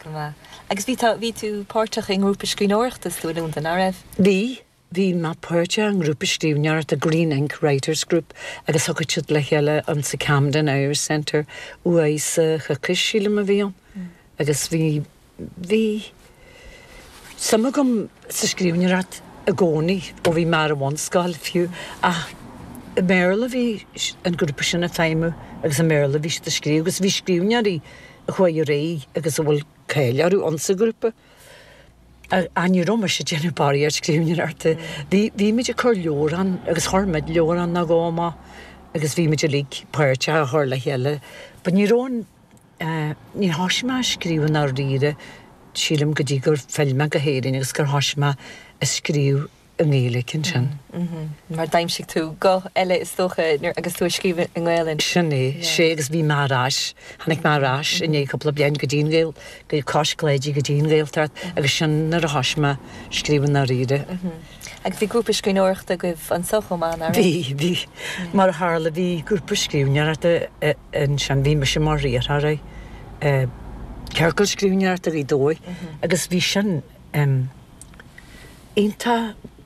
Go maith. Agus bhí tú, bhí tú páirteach i ngrúpa scríbhneoireachta sa Lúndain, ná raibh? Bhí, bhí mé páirteach i ngrúpa scríbhneoireachta, Green Ink Writers Group, agus thiocfadh siad le chéile insa Camden Irish Centre, uair sa choicís, sílim a bhí ann. Agus bhí, bhí suim agam sa scríbhneoireacht i gcónaí, ó bhí mé ar an bhunscoil fiú, ach i mBéarla a bhí an grúpa sin ag feidhmiú agus i mBéarla a bhí siad ag scríobh, agus bhí scríbhneoirí chuaigh ar aghaidh agus a bhfuil cáil orthu ann sa ghrúpa. Ach ní raibh mise ag déanamh barraí ar scríbhneoir ata. Bhímid ag cur leabhar ann agus chuir muid leabhar ann nó dhó amach agus bhímid uilig páirteach a chur le chéile. But ní raibh an, ní thosaigh mé a scríobh i ndáiríre sílim go dtí gur phill mé go hÉirinn agus gur thosaigh mé a scríobh. i nGaeilge ansin. Mar d'aimsigh tú guth eile is dócha nuair agus tú ag scríobh i nGaelainn. Sin é, 'sé agus bhí mé ar ais, tháinig mé ar ais i ndiaidh cúpla bliain go dtí an Gael, go dtí Cois Cláidí, go dtí an Gaeltacht agus sin nuair a thoisigh mé scríobh i ndáiríre. Agus bhí grúpa scríbhneoireachta agaibh anso chomh maith, nach ea? Bhí, bhí. Mar a tharla bhí grúpa scríbhneoireachta ansin bhí mise mar riarthóir i ciorcal scríbhneoireachta Ghaoth Dobhair agus bhí sin iontach.